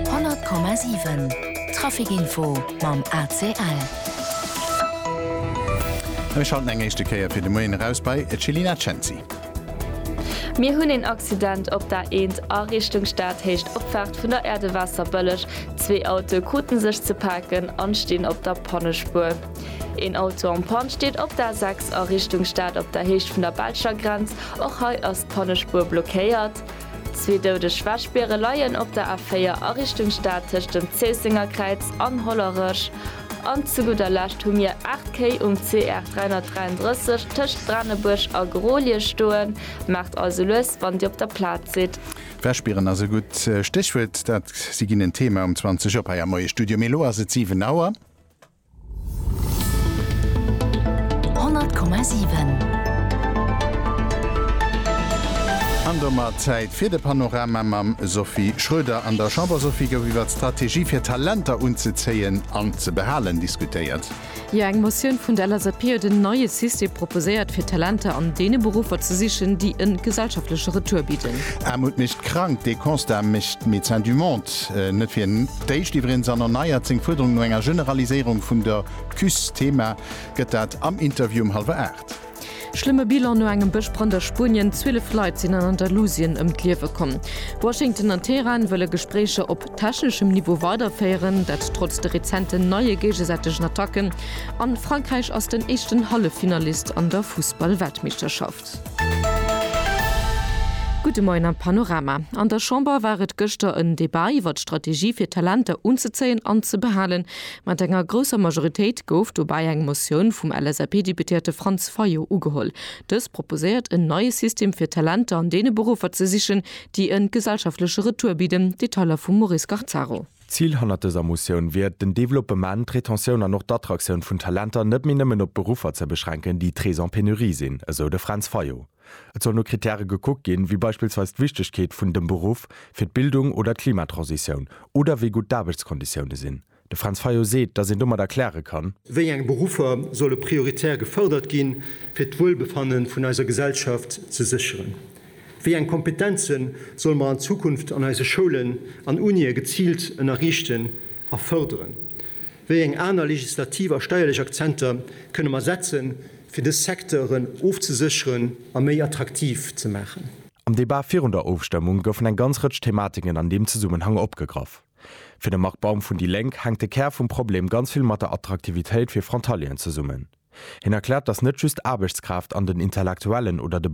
100,7 Trafic Info mam ACL. Mir schalten eng éischte Kéier fir de Moien eraus bei d'Jelina Cenci. Mir hunn een Accident op der A1 a Richtung Stad, héicht Opfaart vun der Aire de Waasserbëlleg. Zwee Autoe kruten sech ze paken an stinn op der Pannespuer. Een Auto en Panne steet op der A6 a Richtung Stad op der Héicht vun der belscher Grenz. Och hei ass d'Pannespuer blockéiert. Zwee doudeg Wäschbiere leien op der A4 a Richtung Stad tëscht dem Zéisséngerkräiz an Hollerech. An zu gudder Lescht hu mir 8 Kéi um CR 333 tëscht Branebuerg a Grolie stoen. Maacht also lues, wann Dir op der Plaz sidd. Wäschbieren ass e gutt Stéchwuert. Dat si ginn en Thema um 20 op hei am Moie Studio. Mee elo ass et 7 Auer. An domat Zäit fir de Panorama mam Sophie Schröder. An der Chamber, Sophie, gouf iwwert d'Strategie fir Talenter unzezéien an ze behalen diskutéiert. Jo, eng Motioun vun der LSAP huet en neie System proposéiert, fir Talenter an deene Beruffer ze sichen, déi e gesellschaftleche Retour bidden. Aarmut mécht krank, dee Constat mécht Médecins du Monde net fir D'éischt iwwregens an erneiert seng Fuerderung no enger Generaliséierung vun der CUS. Thema gëtt dat am Interview um hallwer aacht. Schlëmme Bilan no engem Bëschbrand a Spuenien, 12 Leit sinn an Andalusien ëm d'Liewe komm. Washington an Teheran wëlle Gespréicher op techneschem Niveau weiderféieren, dat trotz de rezenten neie géigesäitegen Attacken. A Frankräich ass den éischten Halleffinalist an der Fussball-Weltmeeschterschaft. Gudde Moien am Panorama. An der Chamber war et gëschter en Debat iwwert d'Strategie fir Talenter unzezéien an ze behalen. Mat enger grousser Majoritéit gouf dobäi eng Motioun vum LSAP-Deputéierte Franz Fayot ugeholl. Dës proposéiert en neie System fir Talenter an deene Beruffer ze sichen, déi e gesellschaftleche Retour bidden. Detailer vum Maurice Garzaro. D'Zil hannert dëser Motioun wier et, den Developpement, d'Retentioun an och d'Attraktioun vun Talenter net méi nëmmen op Beruffer ze beschränken, déi très en pénurie sinn, esou de Fränz Fayot. Et soll no Krittäre gekuckt ginn, wéi beispillsweis d'Wichtegkeet vun dem Beruff fir d'Bildung oder d'Klimatransitioun oder wéi gutt d'Aarbechtskonditioune sinn. De Fränz Fayot seet, datt een domat erkläre kann. Wéi eng Beruffer solle prioritär gefërdert ginn, fir d'Wuelbefanne vun eiser Gesellschaft ze sécheren? Wéi eng Kompetenze solle mer an Zukunft an eise Schoulen an Unië geziilt ënnerriichten a fërderen? Wéi eng aner legislativ a steierlech Akzenter kënne mer setzen, fir dës Secteuren ofzesécheren a méi attraktiv ze maachen? Am Debat virun der Ofstëmmung goufen eng ganz Rëtsch Thematiken an deem Zesummenhang opgegraff. Fir de Marc Baum vun déi Lénk hänkt de Kär vum Problem ganz vill mat der Attraktivitéit fir Frontalieren zesummen. Hien erkläert, datt net just d'Aarbechtskraaft an den Intellektuellen oder de